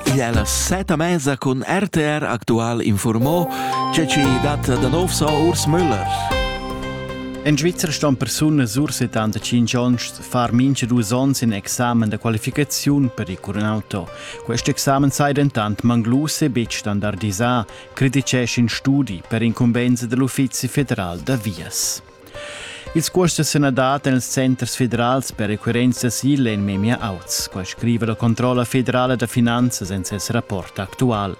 Il è la seta mesa cun RTR Aktual informò che ci dat da nov so Urs Müller. En Svizer ston persunas ur 75 onns far mincha dus ons in examen da qualificaziun per il curnauto. Quest examen sai dentant manglus e betg standardisà, criticesch in studi per incumbensa dell'Uffizi federal da vias. Ils cuosts sun dati nels centers federals per requirents d'asil en memia auts, quai scriva la controlla federala da finanzas en ses rapport actual.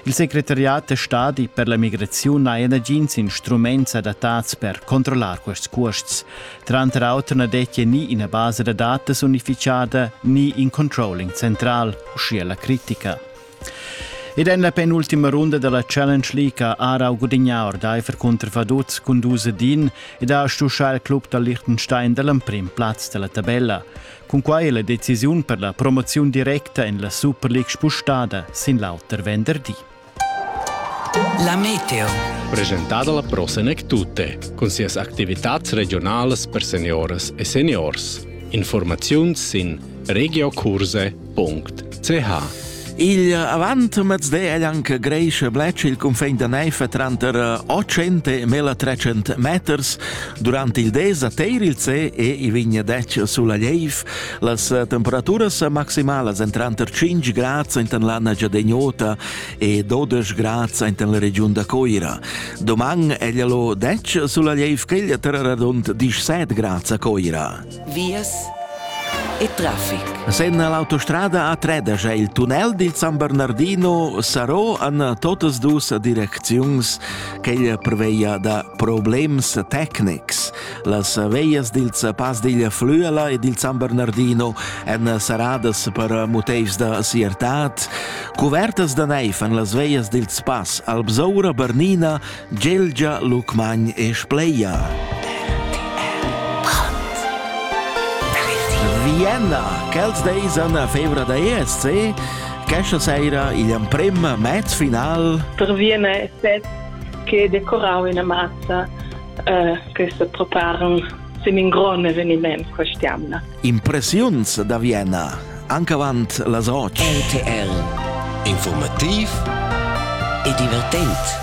Il secretariat da stadi per la migraziun n'ha nagins instruments adattats per controllar quests cuosts. Tranter auter na dettia ni ina basa da datas unificada ni in controlling central, uschia la critica. Ed en la penultima runda dalla Challenge League ha Aarau gudignà ordaifer cunter Vaduz cun dus ed in ed ha stuschà il club da Liechtenstein dall'emprim plaz dalla tabella. Cun quai è la decisiun per la promoziun directa en la Super League spustada sin l'auter venderdi. La Meteo. Presentada la prosenek tutte, cun sias activitats regionalas per seniores e seniors. Informaziuns sin regiocurse.ch ch Il avant mezday è anche greische Bletsch il confin da Neife tranter 800 e 1300 meters. Durante il des a Teir il C e i vigna dec sulla Leiv. Las temperaturas maximalas en tranter 5 grad in l'anna giadegnota e 12 grad in la region da Coira. Doman è lo dec sulla Leiv che il terra radund 17 grad a Coira. vias e traffic. Senna l'autostrada a Tredas è il tunnel dil San Bernardino sarò an totas dus direcziuns ch'ella preveia da problems tecnics. Las veias dils Pas digl Flüela e dil San Bernardino èn saradas per motivs da siertat. Cuvertas da neiv en las veias dils Pas Alpsoura, Bernina, Gelgia Lucmagn e Spleia. Vienna, quels deis an la febra da ESC, questa sera igl amprem match final. Per Vienna è set che decorau ina mazza eh, che se preparano sin in grande eveniment quest'anno. Impressiuns da Vienna, anche avanti las oggi. RTL, informativ e divertente.